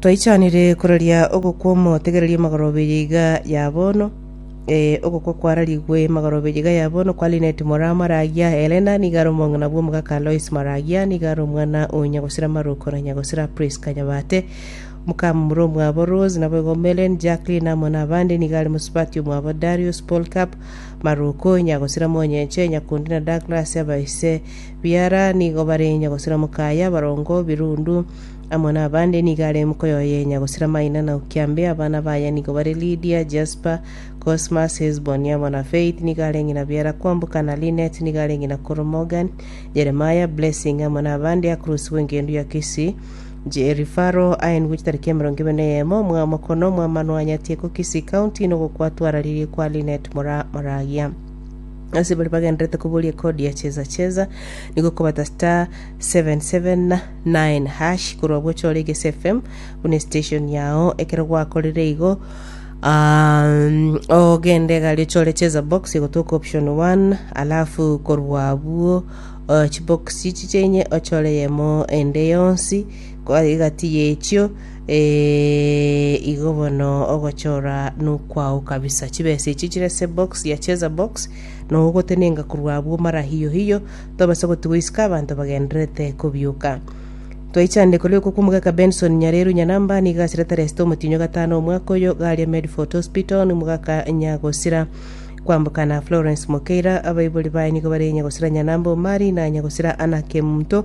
Twaichanire kororia ogokwa omotegereria magoroberia iga ya bono. Eh, ogokwa kwararigwe magoroberia iga ya bono kwa Linet morao Maragia, Helena nigo are omong'ina bw'omogaka Lois Maragia, nigo are omwana o nyagosira Maroko na nyagosira Prisca Nyabate, omokamura omwabo Rose, naboigo Mellen, Jacqueline amo nabande, nigo are mosubati omwabo Darius, Polcap, Maroko, nyagosira Monyenche, Nyakundi na Douglas, abaise Biara nigo barenya gosira mokaye abarongo, birundu, amo nabande nigo are mokoye oyenya gosira maina na okiambe. Abana baye nigo bare Lidia, Jaspa, Cosmas, Hesboni amo na Faith nigo are ng'ina Biara kwamboka na Linet nigo are ng'ina koro Morgan, Jeremiah, Blessing amo nabande Akrus bw'engendu ya Kisii, Jerry Faro aye nigo chitariki emerongo ebere na eyemo mw'amokono mw'amanwa anyatie ko Kisii County nogokwa twararirie kwa Linet mora moragia. Ase baria bagenderete koboria ekodi ya cheza cheza, nigo okobata star 779 hash korwa gocha ore Gese FM buna estation yao. Ekero gwakorire igo, um, ogende egari ochore cheza box egotoka option 1 alafu korwa abwo uh, chibox chiche inye ochore yemo ende yonsi kwa egati yechio Eeh igo bono ogochora nokwao kabisa. Chibesa echi chire ase box ya cheza box nogo gotenenga korwa abwo mara hiyo hiyo tobase gotigwa isiko abanto bagendererete kobioka. Twaichandeko rioko kw'omogaka Benson Nyareru Nyanamba nigo asiretare esete omotinyo gatano omwaka oyo garia Medfort Hospital nomogaka Nyagosira kwambokana Florence Mokeira abaibori baye nigo bare Nyagosira Nyanamba Omari na Nyagosira Anna Kemunto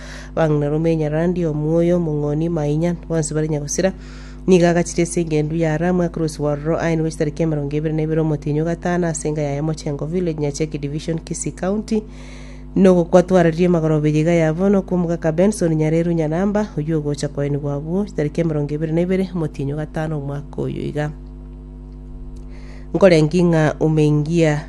Bang'ina Rumi Enyarandi, Omuoyo, Omong'oni, Mainya, bonsi bare nyagosira. Nigo agachire ase eng'endu ya Aramu, Akrus Warro, aye nigo chitariki emerongo ebere na ibere omotienyi o gatano ase enga yaye Mochengo Village, Nyacheki Division, Kisii County, nogokwa twararirie magoro obe yiga ya bono kw'omogaka Benson Nyareru Nyanamba, oyio ogocha koenigwa abwo chitariki emerongo ebere na ibere omotienyi o gatano omwaka oyo iga. Nkorengi ng'a umeingia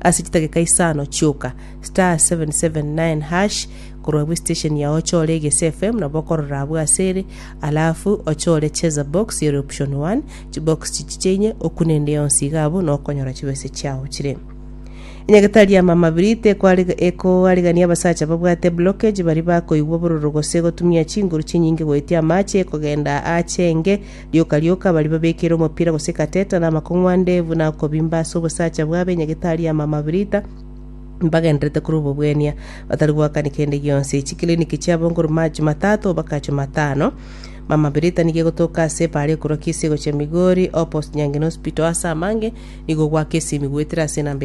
Ase chidageka isano chioka, *779# korwa bwe station yao ochore Egese FM nabo okorora abwo ase ere, alafu ochore Cheza Box ere option one, chibox chichi chiaine okune ende yonsi iga abwo nokonyora chibesa chiao chire. Enyagetari ya Mama Biri tekoarega- ekoarigania abasacha babwate blockage baria bakoigwa obororo gose gotumia chinguru chinyinge goetia amache kogenda ache enge Rioka rioka baria babekeire omopira gose kateta namakong'u ande buna okobimba ase obosacha bwabo enyagetari y'amamabirita, mbagendererete korwa obobwenia, batari goakani kende gionsi. Chikiliniki chiabo nkorwa macho matato mpaka acho matano. Mamabirita nigo egotoka ase epaara ekorwa Kisii gochia Migori, Opposite Nyangeni Hospital ase amange nigo gwaka esimi goetera ase enamba